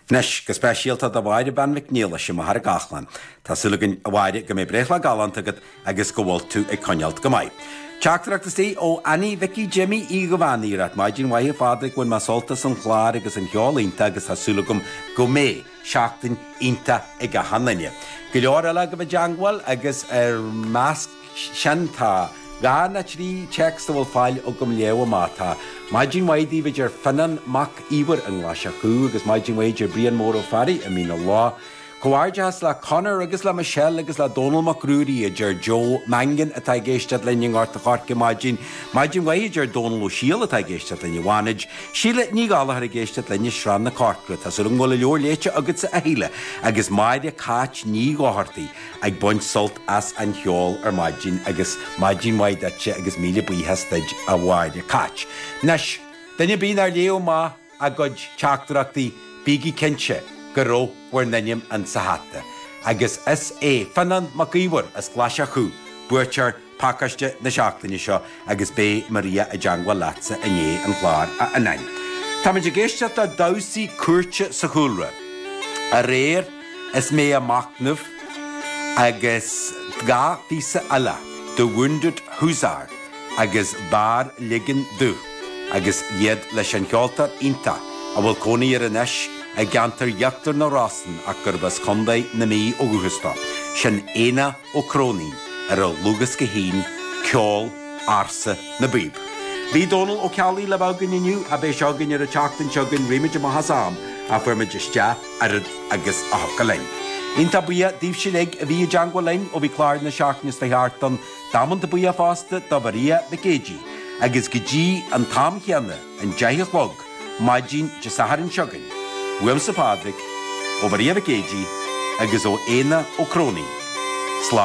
Anois, go speisialta do Mháire Bean Mhic Niallais i Machaire Gathlán. Tá súil againn, a Mháire, go mbeidh breithlá galánta agat agus go bhfuil tú ag coinneáilt go maith. Teachtaireacht istigh ó Annie Mhicí Jimí Uí Dhubhánaigh ag ráit, Maidin mhaith a Phádraig, bhain mé sult as an gclár agus an cheol iontach agus tá súil agam go mbeidh seachtain iontach ag achan duine. Go leor eile agaibh i dteangmháil agus ina measc. sin tá dhá nó trí téacs a bhfuil faill agam léamh amach, tá. Maidin mhaith daoibh adeir Fionán Mac Íomhair i nGlaise Chú agus maidin mhaith adeir Brian Mór Ó Fearraigh i Mín a Leá. Comhghairdeachas le Conor agus le Michelle agus le Dónall Mac Ruairí adeir Joe Mangan atá ag éisteacht linn i nGort a Choirce maidin maidin mhaith adeir Dónall Ó Siail atá ag éisteacht linn i bhFánaid. Síle Ní Ghallachair ag éisteacht linn i Srath na Corcra. Tá súil agam go bhfuil a leabhar léite agatsa a Shíle agus Máire Cáit Ní Dhochartaigh. ag baint sult as an cheol ar maidin agus maidin mhaith duitse agus míle buíochas duid a Mháire Cáit. Anois, duine ar bith nár léadh amach a gcuid teachtaireachtaí, bígí cinnte go raibh bhur n-ainm in sa hata. Agus is é Fionán Mac Iomhair as Glaise Chú, buaiteoir Pacáiste na seachtaine seo agus beidh Maria i dteangmháil leatsa i ndiaidh an chláir a Fhionáin. Táimid ag éisteacht le damhsaí cúirte sa chúlra aréir is mé ag machnamh agus dhá phíosa eile The Wounded Hussar agus B'fhearr Ligean Dóibh agus iad leis an cheoltóir iontach a bhfuil cónaí air anois i gceantar Íochtar na Rosann ach gurb as Contae na Mí ó dhúchas dó, sin Éanna Ó Cróinín, ar a dhlúthdhiosca fhéin ceol ársa na bpíob. Bhí Dónal Ó Ceallaigh le bheith againn inniu, ach beidh sé againn ar an tseachtain seo chugainn, rith muid amach as am ach fuair muid isteach oiread agus a thiocfadh linn. Iontach buíoch daoibhse uilig a bhí i dteangmháil linn ó bhí clár na seachtaine seo chuaigh thart ann damanta buíoch fosta do Mharia Mhic Géidigh agus go dtí an t-am chéanna, an deich a chlog, maidin Dé Sathairn seo chugainn, uaimse Pádraig, ó Mharia Mhic Géidigh agus ó Éanna Ó Cróinín. Slán.